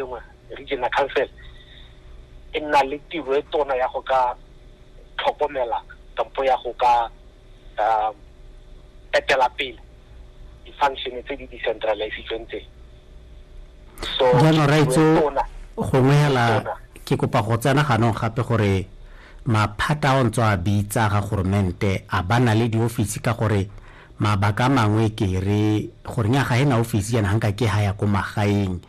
lengwe regional council e nna le tiro e tona ya go ka tlhokomela kampo ya go ka um etela pele di-function tse di decentralizitsweng tse so jaanong raitso gongwe hela ke kopa go tsena ganong gape gore maphata a o ntse a bitsa ga goromente a ba na le diofisi ka gore mabaka a mangwe ke re gore nya ga e na ofisi yana ga nka ke ga ya ko magaeng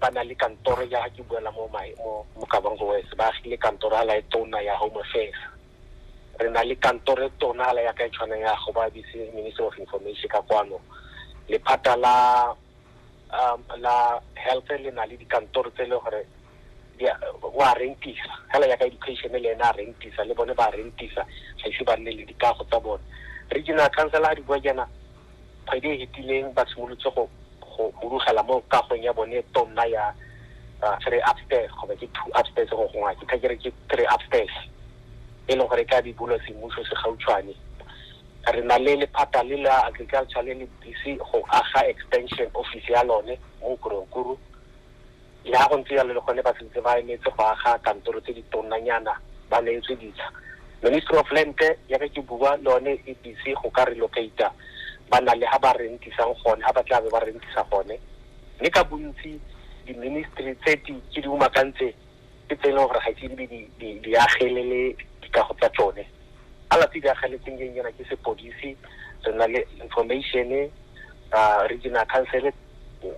ba na le kantoro ya ke buela mo mo kabango west ba agile kantoro ala e tona ya home affairs re na le kantoro e tona ala ya ka e tshwanang ya go ba bise minister of information ka kwano lephata la um, la health le na le dikantoro tse e le gore wa rentisa fela yaka education le ena a rentisa le bone ba rentisa ga ise ba nne le dikago tsa bone regional council ga di bua jaana kgwedi e hetileng ba simolotse go go hudugela mo kagong ya bone tonna ya uh, three upstairs kgotsa ke two upstairs go gongwa ke thakere ke three upstairs e leng gore ka di bulwa semmuso se gautshwane re na le lephata le la agriculture le le busy go aga extension office ya lone mo koronkuru Le ha go ntse jalo le gone ba sentse ba emetse go aga kantoro tse di tonnanyana ba neetswe ditsha. Ministry of Land yaka ke bua le one e busy go ka relocate-a ba na le ha ba rentisang gone, ha ba tla be ba rentisa gone. Mme ka bontsi di-ministry tse di ke di umakantse ke tse e leng gore ga ise di be di agelele dikago tsa tsone. Alafi e diragetseng ke nkena ke sepodisi re na le information uh, regional council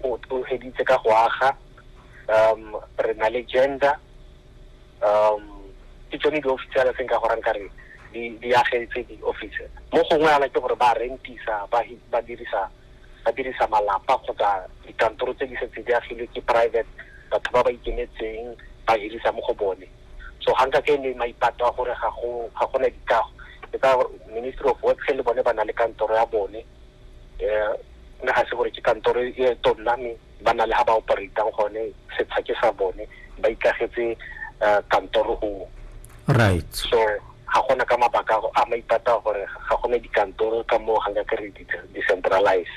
o tloheditse ka go aga um re na le gender um ke tsone di-office ala seng ka gorang kare di agetse di-office mo gongwe ala ke gore ba rentisa ba dirisa ba dirisa malapa kgotsa dikantoro tse di setse di agilwe ke private batho ba ba ikemetseng ba hirisa mo go bone so ga nka ke le maipato a gore ga go ga go na dikago ke ka ministry of works le bone ba na le kantoro ya bone eh nna ga se gore ke kantoro e tonna me ba na le ga ba operatang gone setsha ke sa bone ba ikagetse eh, kantoro go right so ga gona ka mabaka a go- a maipata gore ga gone dikantoro ka moo ga nka ke re di- decentralize